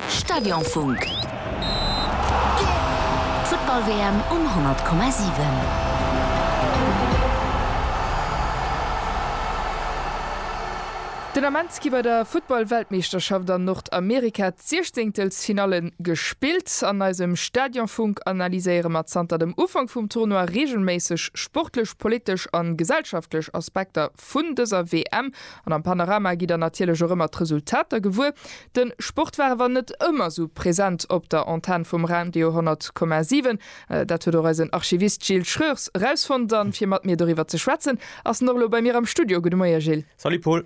Stadionfunk. D'Futtball-WM um 100,7. Den Ament gi bei der Futtball-Weltmeeschterschaft an Nordamerika d'Siechzeengtelsfinalle gespillt. An eisem Stadionfunk analyséiere mer zanter dem Ufank vum Tournoi reegelméisseg sportlech, politesch a gesellschaftlech Aspekter vun dëser WM. An am Panorama gitt der natierlech och ëmmer d'Resultater gewuer. De Sport war awer net ëmmer esou present op der Antenn vum Radio 10,7. Dat huet och eisen Archivist Gilles Schreurs erausfonnt. A fir mat mir doriwwer ze schwätzen, ass en och elo bei mir am Studio. Gudde Moie Gilles. Salut Paul.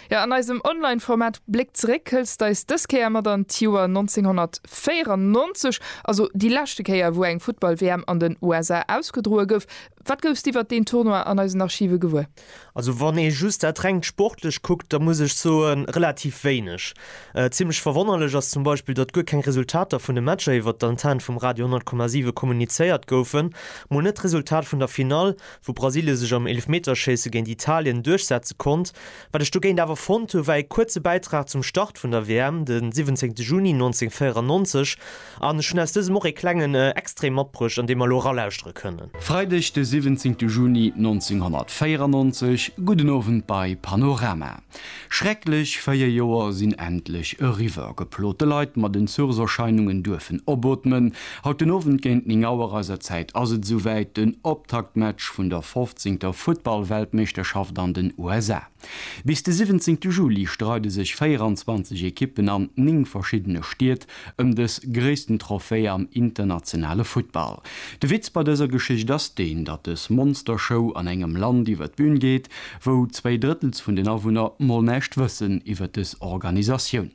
Jo, an eisem Online-Format Bléck zeréck hëls de eis dës Kéier mat an d'Joer 1994, also déi leschte Kéier wou eng Futtball-WM an den USA ausgedroe gouf. Wat goufs de iwwert deen Tournoi an eisen Archive gewuer? Also wann ee just dat rengt sportlecht kuckt, da muss ech soen, relativ wéineg. Zimmlech verwonnerlech ass zum Beispill, datt guer keng Resultater vun de Matcher iwwert d'Antenne vum Radio 100,7 kommunizéiert goufen. Mol net d'Resultat vun der Finall, wou Brasilien sech am Eelefmeterschéisse géint Italien duerchsetze konnt. Wat ech dogéint awer fonnt hu war ee kuerze Bäitrag zum Start vun der WM, de 17 Juni 1994, An ech hunn aus dësem och ee klengen Extrait matbruecht, an dee mer elo eralauschtere kënnen. Freideg de 17 Juni 1994, gudden Owend bei Panorama. Schrecklech 4 Joer sinn endlech eriwwer. Geplote Leit mat Entzugserscheinungen duerfen opootmen. Haut den Owend géint 9 Auer eiser Zäit ass et esouwäit, den Optaktmatch vun der 15. Futtball-Weltmeeschterschaft an den USA. Bis de 17 Juli streide sech 24 Ekippen an 9 verschiddene Stied ëm dës gréissten Trophée am internationale Futtball. De Witz bei dëser Geschicht ass deen, datt dës Monstershow an engem Land iwwer d'Bühn geet, wou zwéi Drëttels vun den Awunner mol näischt wëssen iwwer dës Organisatioun.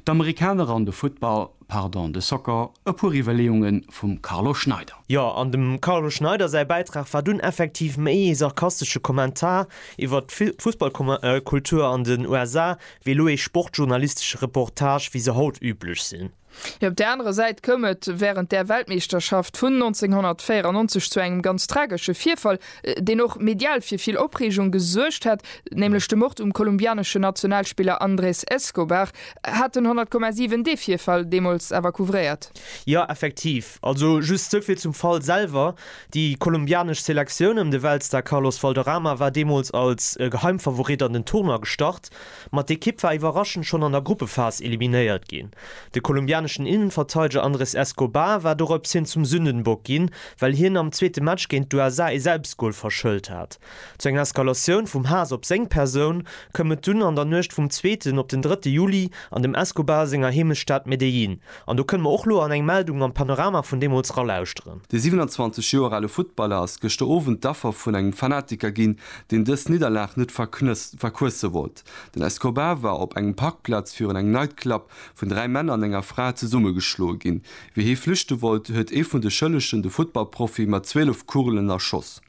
D'Amerikaner an de Futtball. Pardon, de Soccer, e puer Iwwerleeunge vum Carlo Schneider. Jo, an dem Carlo Schneider säi Bäitrag war dunn effektiv méi ee sarkastesche Kommentar iwwert d'Fussballkultur an den USA, wéi elo ee sportjournalistesche Reportage, wéi se haut üblech sinn. Mee op där anerer Säit koum et wärend där Weltmeeschterschaft vun 1994 zu engem ganz tragesche Virfall, deen och medial fir vill Opreegung gesuergt hat, nämlech de Mord um kolumbianeschen Nationalspiller Andrés Escobar, hat den 100,7 dee Virfall deemools awer couvréiert. Jo, effektiv. Also just souvill zum Fall selwer, Déi kolumbianesch Selektioun ëm de Weltstar Carlos Valderrama war deemools als Geheimfavorit an den Tournoi gestart. Ma d'Ekipp war iwwerraschend schonn an der Gruppephas eliminéiert ginn. De kolumbianeschen Innenverteideger Andres Escobar war dorops hin zum Sündenbock ginn, well hien am zweete Match géint d'USA ee Selbstgol verschëllt hat. Zu enger Eskalatioun vum Haass op seng Persoun koum et dunn an der Nuecht vum zweeten op den drëtte Juli an dem Escobar senger Heemechtsstad Medellín, An do kënne mer och lo an eng Meldung am Panorama vun deemools ralauschteren. De 27 Joer ale Futtballer ass gëschter Owend d'Affer vun engem Fanatiker ginn, deen dës Nidderlag net verquësse wollt. Den Escobar war op engem Parkplaz virun engem Nightclub vun dräi Männer an enger Fra zesummegeschloe ginn. Wéi hie flüchte wollt, huet ee vun de Schëllegen de Futtballprofi mat 12 Kugelen erschoss.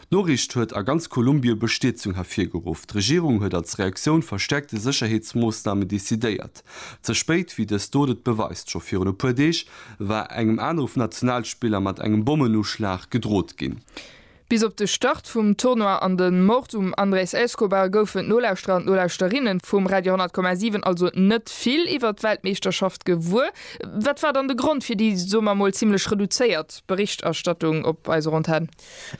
D'Noriicht huet a ganz Kolumbie Bestierzung hervirgeruff. D'Regierung huet als Reaktioun verstäerkte Sécherheetsmoossnamen decidéiert. Ze spéit, wéi dës Dot et beweist. Scho virun e puer Deeg war engem anere Nationalspiller mat engem Bommenuschlag gedrot ginn. Bis op de Start vum Tournoi an de Mord um Andrés Escobar goufen d'Nolauschterer an d'Nolauschterinne vum Radio 100,7 also net vill iwwert d'Weltmeeschterschaft gewuer. Wat war dann de Grond fir déi, soe mer mol, zimmlech reduzéiert d'Berichterstattung op eiser Antenn.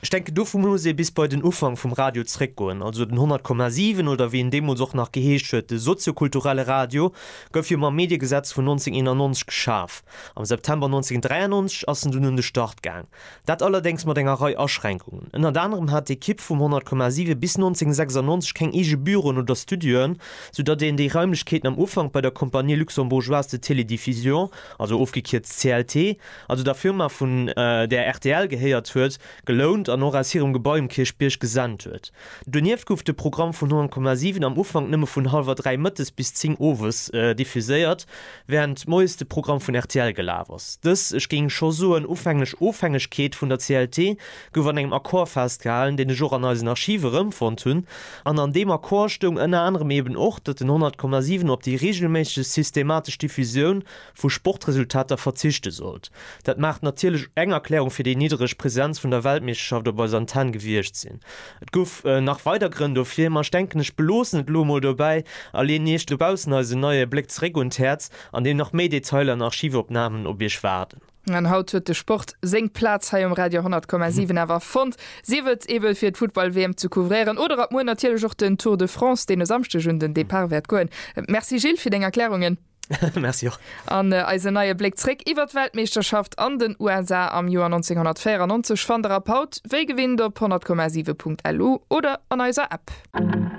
Ech denken dovun muss ee bis bei den Ufank vum Radio zréckgoen, also den 100,7 oder wéi en deemools och nach geheescht huet, de soziokulturelle Radio gouf jo mam Mediegesetz vun 1991 geschaf. Am September 1993 ass en dunn un de Start gaang, dat allerdéngs mat enger Rei Aschränkungen. Ënnert anerem hat d'Ekipp vum 100,7 bis 1996 keng eege Büroen oder Studioen, sou datt een déi Raimlechkeeten am Ufank bei der Compagnie Luxembourgeoise de Télédiffusion, also ofgekierzt CLT, also der Firma vun där rtl gehéiert huet, gelount an och aus hirem Gebai um Kierchbierg gesent huet. Donieft gouf de Programm vun 100,7 am Ufank nëmme vun hallwer dräi mëttes bis zéng owes diffuséiert, wärend moies de Programm vun rtl gelaf ass. Dës, ech géing scho soen, ufänglech Ofhängegkeet vun der CLT gouf an engem Accord festgehalen, deen ech och an eisen Archive erëmfonnt hunn, an an deem Accord stoung ënner anerem eben och, datt den 100,7 op déi reegelméisseg systematesch Diffusioun, vu Sportresultater verzichte sollt. Dat mag natierlech eng Erklärung fir déi niddereg Presenz vun der Weltmeeschterschaft op eiser Antenn gewiescht sinn. Et gouf nach weider Grënn dofir, ma ech denken ech beloossen et elo mol dobäi a leeën iech dobaussen eisen neie Bléck zeréck un d'Häerz, an deem nach méi Detailer an Archivopnamen op iech waarden. An haut huet de Sport seng Plaz hei um Radio 100,7 awer fonnt, sief et eebe fir d'Futtball-WM ze couvréieren oder ab muer natierlech och den Tour de France, deen e Samschdeg un den Depart wäert goen. Merci Gilles fir deng Erklärungen. Merci och. An eisen neie Bléck zréck iwwert d'Weltmeeschterschaft an den USA am Joer 1994 fannt der ab haut wéi gewinnt op 100,7.lu oder an eiser App.